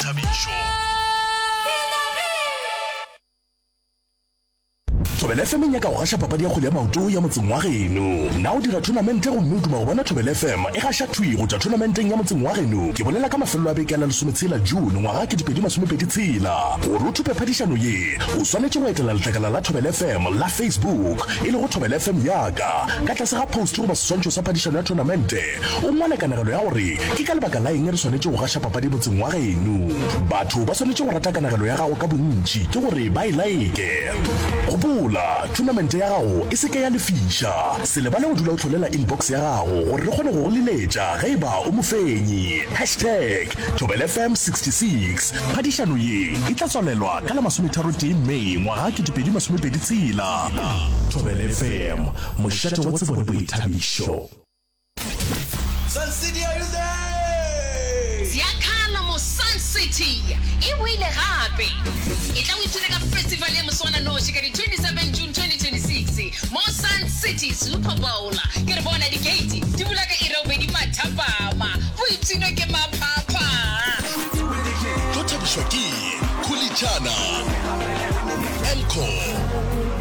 Thabišo. Thobela FM e nyaka go gaša papadi ya kgwele ya maoto ya motseng wa geno. Na o dira thonamente gomme o duma go bona Thobela FM e gaša thwi go tšwa thonamenteng ya motseng wa geno? Ke bolela ka mafelelo a beke a la lesometshela June ngwaga ke dipedi masomepedi tshela. Gore o thupe phadišano ye, o swanetše go etela letlakala la Thobela FM la Facebook e lego Thobela FM Yaka. Ka tlase ga post goba seswantšho sa phadišano ya thonamente, O ngwale kanegelo ya gore ke ka lebaka la eng re swanetše go gaša papadi motseng wa geno. Batho ba swanetše go rata kanegelo ya gago ka bontši ke gore ba e like. Gopola, thunamente ya gago e se ke ya lefiša. Se lebale go dula o hlolela inbox ya gago gore re kgone go go liletša ge e ba o mofenyi. Hashtag ThobelFM 66 Phadišano ye e tla tswalelwa ka la masometharotee May ngwaga 2026. ThobelFM, mošate wa tsebo le boithabišo. Ziakala mo Sun City e boile gape. E tla o ithuta ka festival ya moswananoši ka di 27 June 2026 mo Sun City Super Bowl. Ke re bona dikeiti di bula ka iri ya bobedi mathapama, bo ipshinwe ke maphapha. Tlo thabišwa ke Khulitšana, Encore.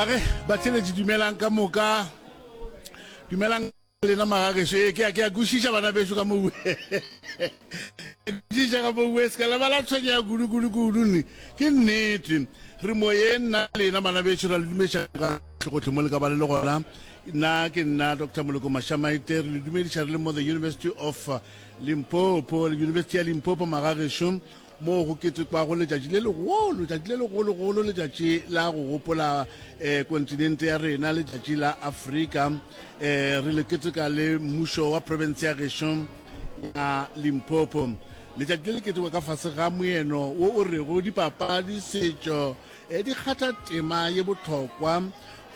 age batheletši dumelang ka moka dumelang lena magageso ee ke a kwešiša bana beso ka moue kwešiša ka moue se ka lebala tshwenye ya kudukudukulu ne ke nnete re moye nna lena bana beso ra le dumediša ka tlhogotlhe mo le ka ba le le gona nna ke nna dr moloko mashamaite re le dumediša re le mo the university of limpopo le university ya limpopo magageso moo go ketekwago letšatši le legolo letšatši le legologolo letšatši la go gopola um kontinente ya rena letšatši la afrika um re le keteka le mmušo wa province ya gešo ya limpopo letšatši le le ketekwa ka fase ga moeno wo o rego dipapadi setšo um di kgatha tema ye bohlokwa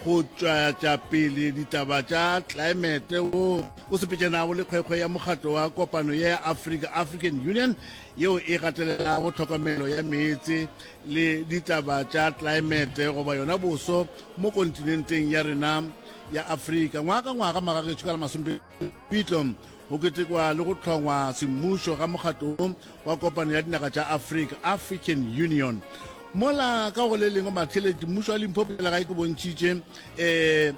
go tšwatša pele ditaba tša tlelaemete wo o sepetšanago le kgwekgwe ya mokgatlo wa kopano ya africa african union yeo e gatelelago tlhokomelo ya meetse le ditaba tša tlelaemete goba yona boso mo kontinenteng ya rena ya afrika ngwaga ka ngwaga magagetšo ka la masompepitlo go ketekwa le go tlhongwa semmušo ga mokgatlo wa kopano ya dinaga tša afrika african union mola ka go le lengwe matheletši mmušo wa limpopo pele gae ke bontšhitše um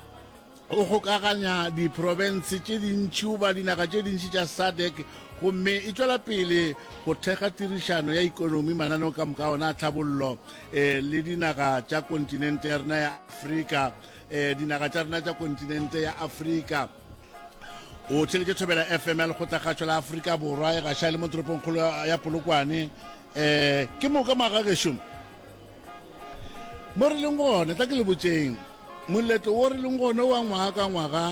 O gokaganya diprofense tše dintši goba dinaga tše dintši tša SADC gomme e tšwela pele go thekga tirišano ya ikonomi, mananeo ka moka ona a tlhabollo eh, le dinaga tša kontinente ya rena ya Afrika eh, dinaga tša rena tša kontinente ya Afrika. O theletše thobela FM ya lekgotlakgatšo la Afrika Borwa e gaša le mo toropongkgolo ya Polokwane. Eh, ke moka maga gešo. mo re leng gona tla ke le botseng moletlo wo re leng gone wa ngwaga ka ngwaga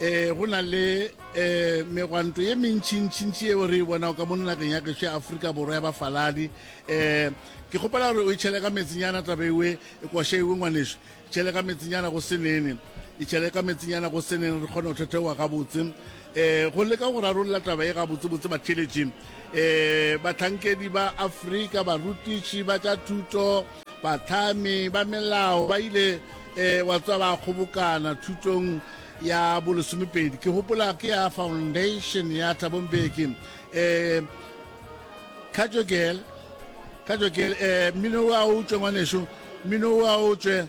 um go na le um megwanto ye mentšhintšhintši eo re e bonago ka mo nageng ya gešo ya aforika borwa ya bafaladi um ke kgopela gore o e tšhele ka metsinyana taba ewe e kwashe ewe ngwaneso Itšhele ka metsinyana go se nene. Itšhele ka metsinyana go se nene re kgone go thetheoa gabotse. Um go leka go rarolla taba e gabotsebotse, batheeletši, um bahlankedi ba Afrika, barutiši ba tša thuto, bahlami ba melao ba ile, um wa tswa ba kgobokana thutong ya bolesomepedi. Ke gopola ke ya foundation ya Thabo Mbeki, um Khajo girl, Khajo girl, eh, mmino wa o tšwe ngwaneso, mmino wa o tšwe.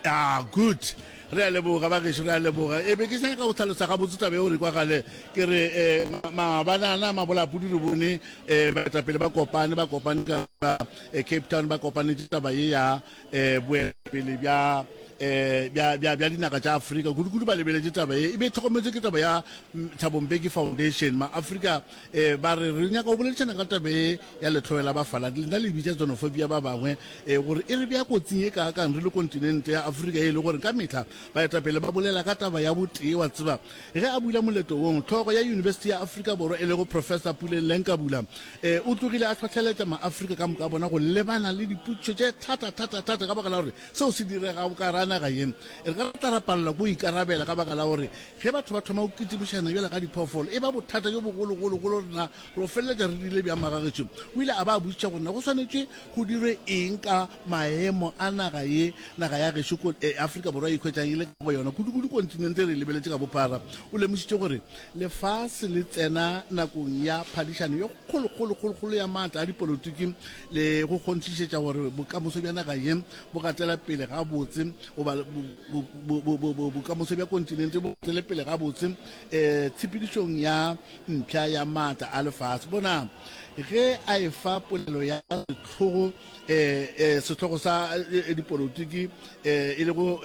Ah, good. Re a leboga ba geso, re a leboga. E be ke sa ka go tlhalosa ga botse tabe o re kwa gale. Ke re eh mabanana mabolapudi re bone eh baetapele ba kopane ba kopane ka eh, Cape Town ba kopane taba ye ya eh boetapele bja eh bja bja bja dinaka tša Afrika kudu kudu ba lebeletse taba ye e be tlhokometse ke taba ya mm, Thabo Mbeki Foundation ma Afrika E, ba re, re nyaka go boledišana ka tabe ya letlhoe la bafaladi lena le bitša xenophobia ba bangwe e, gore e re bea kotsing e kaakang re le kontinente ya Afrika e le gore ka mehla baetapele ba bolela ka taba ya botee. Wa tseba, ge a bula moleto wong, tlhogo ya Yunibesithi ya Afrika Borwa e lego Professor Puleng Lenkabula e, o tlogile a hlohleletša Maafrika ka moka bona go lebana le dipotšišo tše thata-thata-thata ka baka la gore seo se direga o ka ra naga ye re ka tla ra palelwa ke go ikarabela ka baka la gore Ge batho ba thoma go kitipišana bjalo ka diphoofolo, e ba bothata bjo bogologolo go lena. Re feleletša re dirile bjang magagešo? O ile a ba botšiša gore na go swanetše go dirwe eng ka maemo a naga ye naga ya gešo ko Afrika Borwa e ikhwetšang e le ka go yona, kudukudu kontinente e re lebeletše ka bophara. O lemošitše gore lefase le tsena nakong ya phadišano ye kgolokgolokgolokgolo ya maatla a dipolotiki le go kgonthišetša gore bokamoso bja naga ye bo gatela pele gabotse goba bokamoso bja kontinente bo gatele pele gabotse um eh, tshepedišong ya mpša ya maatla a lefase bonang ge a e fa polelo ya setlhogo eh, eh, setlhogo sa dipolotiki e le go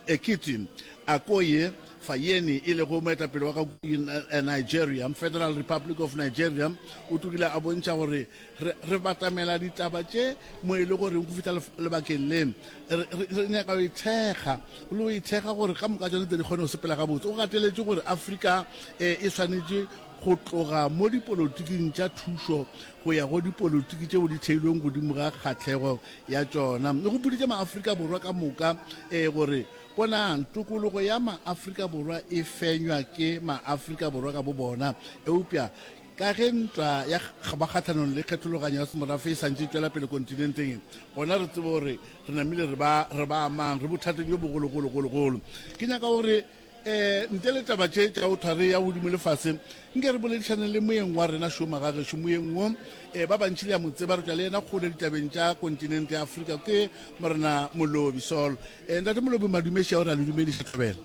ekete akoye fayeni e lego moetapele wa ka nigeria federal republic of nigeria o tlogile a bontšha gore re, re batamela ditaba tše mo e le goreng go fihla lebakeng le re, re, re nyaka go ithekga le go ithekga gore ka moka tsone tse di kgone go sepela gabotse o gateletse gore afrika e, e swanetše go tloga mo dipolotiking tša thušo go ya go dipolotiki tšeo di theilweng godimo ga kgatlhego ya tšona le go puditše maaforika borwa ka moka um gore bonang tokologo ya maaforika borwa e fenywa ke maaforika borwa ka bo bona eupša Ka ge ntwa ya kgaba kgahlanong le kgethologanyo ya semorafe e santše e tšwela pele kontinenteng e, gona re tsebe gore re namile re ba, re ba mang, re bothateng bjo bogologologologolo. Ke nyaka gore um ntle le taba tše tša go thware ya godimo le fase, nke re boledišaneng le moyeng wa rena šoma ga gešo. Moyeng wo um ba bantši le a mo tseba, re tšwa le yena kgole ditabeng tša kontinente ya Afrika. Ke Morena Molobi Saul. Um Ntate Molobi, Madume, ešao re a le dumediša, Tlhabela.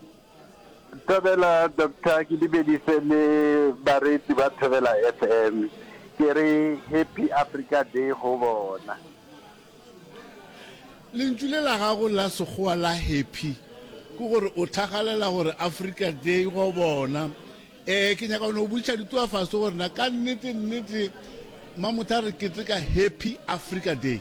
Thobela Doctor ke dumedise le bareetsi ba Thobela FM ke re happy Africa Day go bona. Lentšu le la gago la Sekgowa la happy ke gore o thagalela gore Africa Day go bona. Eh ke nyaka no botšiša dituafaso gore na ka nnete nnete Mamotha re keteka happy Africa Day.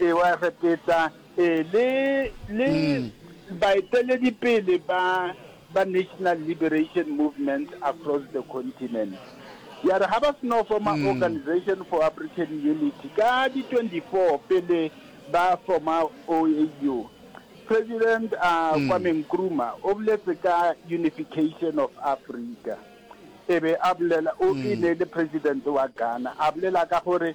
Ewa re peta e le le baeteledipele ba ba National Liberation Movement across the continent. Ya re ga ba seno forma Organisation for African Unity ka di 24 pele ba forma OAU, President a Kwame Nkrumah o boletse ka unification of Africa. E be a bolela o e ne le President wa Ghana a bolela ka gore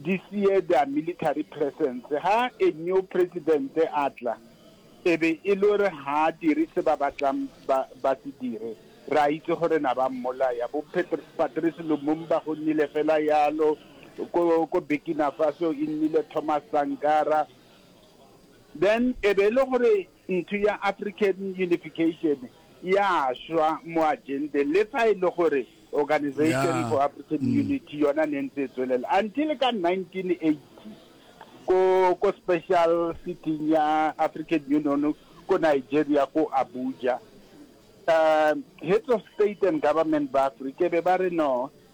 di siye their military presence. Ha a new president a tla, e be e le gore ha a dire se ba batlang ba ba se dire, re a itse gore na ba mmolaya. Bo Patrice Lumumba go nnile fela yalo, ko ko Burkina Faso e nnile Thomas Sankara, then e be e le gore Ntho ya African Unification ya šwa mo agenteng le fa e le gore Organisation for African mm. Unity yona ne ntse e tswelela until ka 1980 ko ko special sitting ya African Union ko Nigeria ko Abuja um heads of state and government ba Africa be ba re no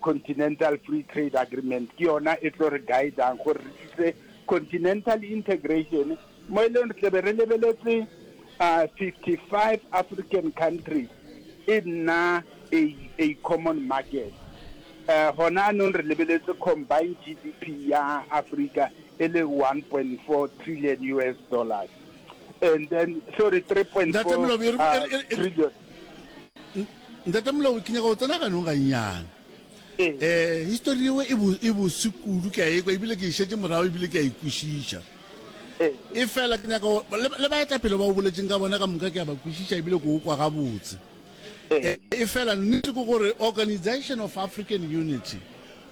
Continental Free Trade Agreement ke yona e tlo re guidang gore re tlise continental integration mo e leng re tlebe re lebeletse uh, 55 African countries e nna a, a common market uh, gona anong re lebeletse combined GDP ya Africa e le 1.4 trillion US dollars and then sorry 3.4 uh, trillion Ntate Molao, ke nyaka go tsena ganong gannyane. um histori yeo e, e bose kudu ke a ekwa ebile ke e šetse morago ebile ke a ikwešiša e fela ke nyaka le baetapele ba o boletseng ka bona ka moka ke a ba kwešiša ebile ko o kwa gabotse e fela nnete ke gore organization of african unity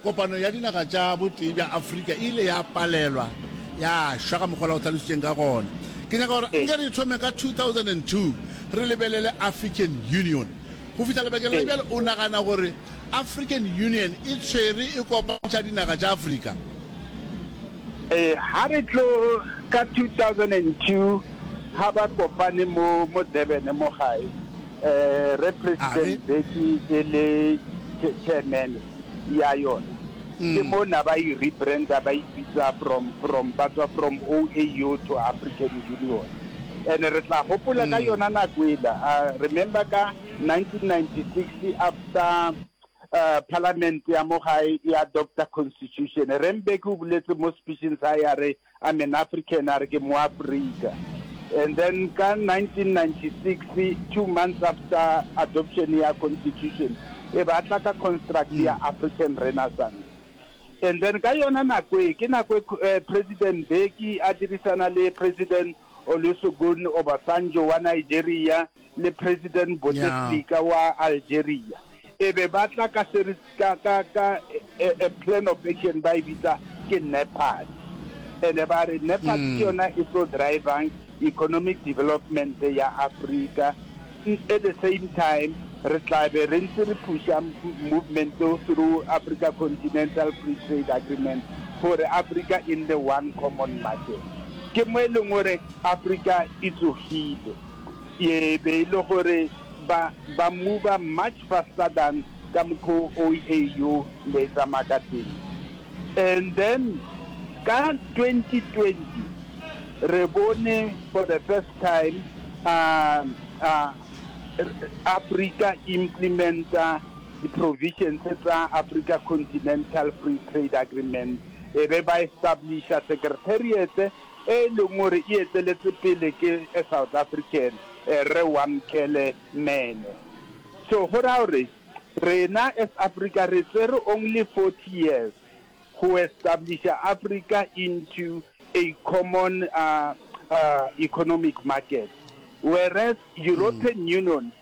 Kopano ya Dinaga tša Botee bja Afrika e ile ya palelwa ya šwa, ka mokgwa o la go hlalositšeng ka gona. Ke nyaka gore nke re thome ka 2002 re lebelele African Union. Go fihla lebakeng la bjale, o nagana gore African Union e tshwere e kopantšha dinaga tša Afrika? Ee, ga re tlo ka 2002 ga ba kopane mo, mo Durban mo gae. Eh, re president beki e le cha- chairman ya yona ke mo na ba e rebranda ba ipitsa from from ba tswa from OAU to African Union and re tla gopola ka yona nako ela uh, remember ka 1996 after uh, parliament ya mo gae ya doctor constitution rembeki o boletse mo speeching sa ya re I'm an African, a re ke moAfrika. And then ka 1996, two months after adoption ya constitution, e ba tla ka construct ya mm. African Renaissance. And then ka yona nako e, ke nako e eh, President Mbeki a dirisana le President Olusegun Obasanjo wa Nigeria, le President Bouteflika wa Algeria e be ba tla ka se re ka ka ka a, a plan of action ba e bitsa ke NEPAD ene ba re NEPAD ke yona e tlo drivang economic development ya Africa at the same time re tla be re ntse re pusha movement through Africa Continental Free Trade Agreement gore Africa in the one common market ke mo e leng gore Africa e tsogile Ye e be e le gore ba, ba mmuba much faster than ka mokgo OAU ne e tsamaya ka teng. And then ka 2020 re bone for the first time uh, uh, Africa e implementa di-provisions tsa Africa Continental Free Trade Agreement, e be ba establisha secretariat e leng gore e eteletše pele ke a South African, Rre Wamkele Mene. So go ra gore rena as Africa re tsere only 40 years go establisha Africa into a common economic market, whereas European Union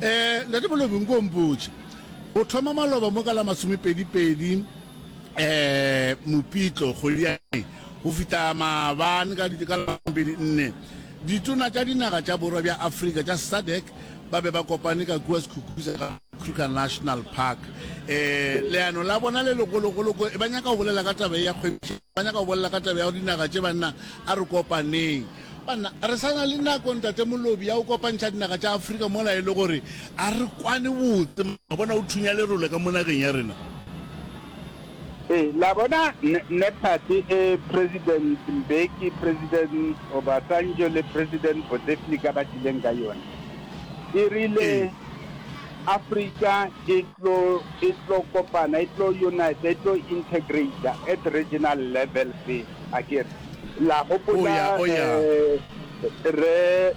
Eh, Ntate Molobi, nko o mpotše. O thoma maloba mo ka la masomepedi-pedi eh, Mopitlo, kgwedi ya May, go fita maabane ka di- ka la masomepedi-nne. Ditona tša dinaga tša borwa bja Afrika tša SADC ba be ba kopane ka kua Sekhukhuse ga Kruger National Park. Eh, leano la bona le legologolo ko ba nyaka go bolela ka taba ye ya kgwebišano. Ba nyaka go bolela ka taba ya gore dinaga tše, banna, a re kopaneng. Banna, re sa na le nako, Ntate Molobi, ya go kopantšha dinaga tša Afrika mola e le gore a re kwane botse. Mma, bona o thunya lerole ka mo nageng ya rena. Ee, la bona, Npad, ee, President Mbeki, President Obasanjo le President Bouteflika ba tlileng ka yona, e rile. Ee. Africa e tlo, e tlo kopana, e tlo unita, e tlo integrata at regional level se, a ke re. La gopola Rre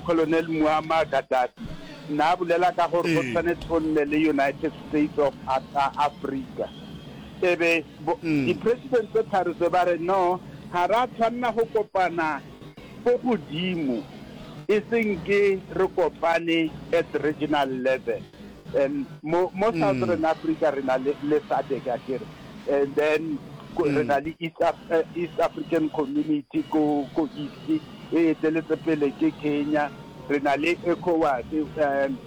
Colonel Muammar Gaddafi na bolela ka gore go tshwanetse go nne le United States of Africa. E be di-president tse tharo tse ba re no, ga ra tshwanela go kopana. Ko godimo, e se nke re kopane at regional level and mo mo Southern Africa re na le le SADC akere and then re na le East East African Community ko ko East e eteletse pele ke Kenya. Re na le Ecowas, um,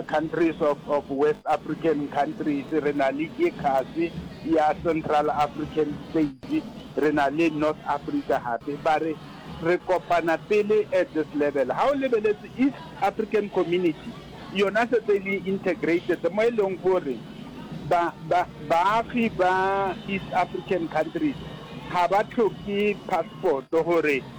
countries of, of West African countries, re na le ECAS ya Central African States, re na le North Africa gape. Ba re re kopana pele at this level. Ha o lebeletse East African Community, yona setse e le integrated, mo e leng gore ba, ba, baagi ba East African countries ga ba tlhoke passport gore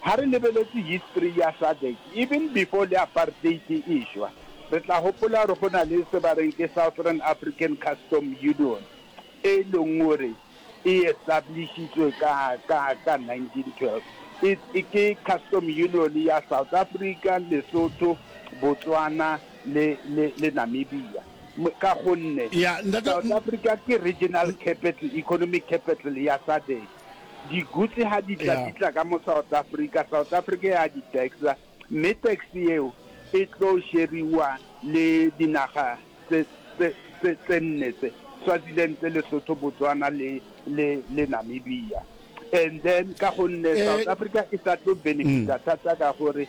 Ha re lebeletše history ya SADC, even before le apartheid e e-šwa, re tla gopola gore go na le se ba reng ke Southern African Custom Union, e leng gore e establishitswe ka, ka, ka 1912. Ke custom union ya South Africa, Lesotho, Botswana le, le, le Namibia. Ka gonne South Africa ke regional capital, economic capital ya SADC. Digutse ha di tla di tla ka mo South Africa, South Africa ya di taxa mme tax eo e tlo sheriwa le dinaga tse tse tse tse nne tse Swaziland, Lesotho, Botswana le le le Namibia. And then ka gonne eh, South Africa e sa tlo benefita mm. thata ka gore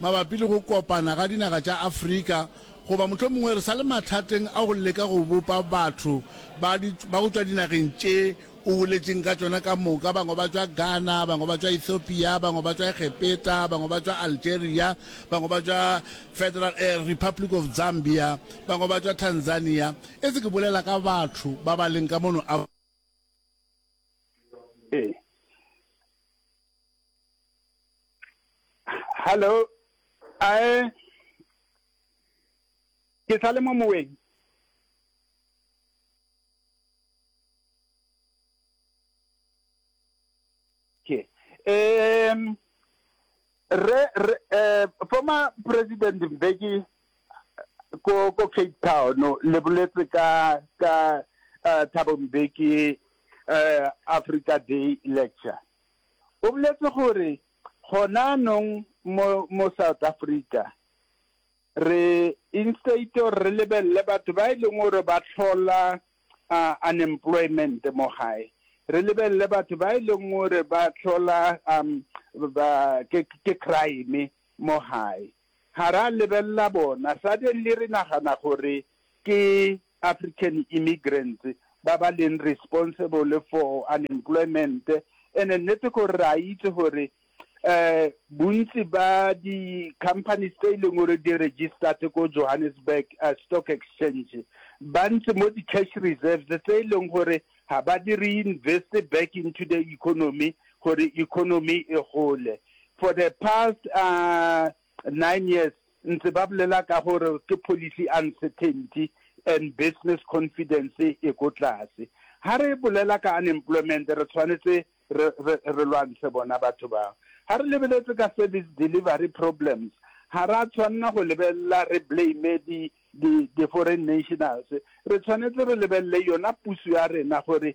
mabapi le go kopana ga dinaga tša Afrika goba mohlomongwe re sa le mathateng a go leka go bopa batho ba, di, ba go tšwa dinageng tše o boletšeng ka tšona ka moka. Bangwe ba tšwa Ghana, bangwe ba tšwa Ethiopia, bangwe ba tšwa Egepeta, bangwe ba tšwa Algeria, bangwe ba tšwa Federal eh, Republic of Zambia, bangwe ba tšwa Tanzania. E se ke bolela ka batho ba ba leng ka mono. Ee. hallo ae ke sa le mo moweng ke um re re eh, former president mbeki ko ko cape town le boletse ka ka uh, thabo mbeki uh, africa day lecture O boletse gore gonaanong mo mo South Africa re instead gore re lebelele batho ba e leng gore ba tlhola unemployment mo gae re lebelele batho ba e leng gore ba tlhola um ba ke crime mo gae ga ra lebelela bona suddenly re nagana gore ke African immigrants ba ba leng responsible for unemployment and nnete ke gore re a itse gore um bontsi ba di-companies tse e leng gore di registered ko Johannesburg uh, stock exchange ba ntse mo di-cash reserves tse e leng gore ga ba di reinvest back into the economy gore economy e gole for the past uh, Nine years ntse ba bolela ka gore ke policy uncertainty and business confidence e ko tlase. Ha re bolela ka unemployment re tshwanetse re, re, re lwantshe bona batho bao. Ha re lebeletse ka service delivery problems, ha ra tshwanela go lebelela re blame di, di, di foreign nationals. Re tshwanetse re lebelele yona puso ya rena gore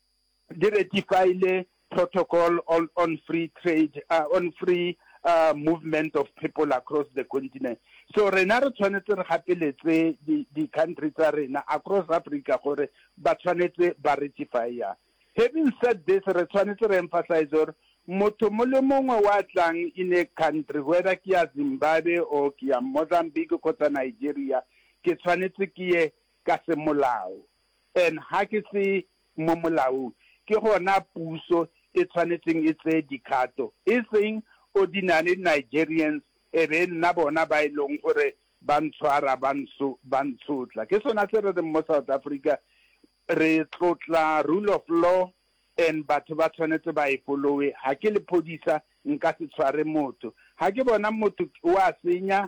Di ratifaile Protocol on on Free Trade, uh, on Free uh, Movement of People Across the Continent. So rena re tshwanetse re gapeletse di-country tsa rena across Africa gore ba tshwanetse ba ratifya. Having said this, re tshwanetse re emphasize gore motho mo le mongwe wa tlang in a country whether ke ya zimbabwe or ke ya mozambique kgotsa nigeria ke tshwanetse ke ye ka semolao And ha ke se mo molaong, ke gona puso e tshwanetseng e tseye dikgato, e seng ordinary Nigerians e be e nna bona ba e leng gore ba ntshwara ba nso ba ntshotla. Ke sona se re reng mo South Africa re tlotla rule of law and batho ba tshwanetse ba e follow-e. Ha ke lephodisa nka se tshware motho, ha ke bona motho o a senya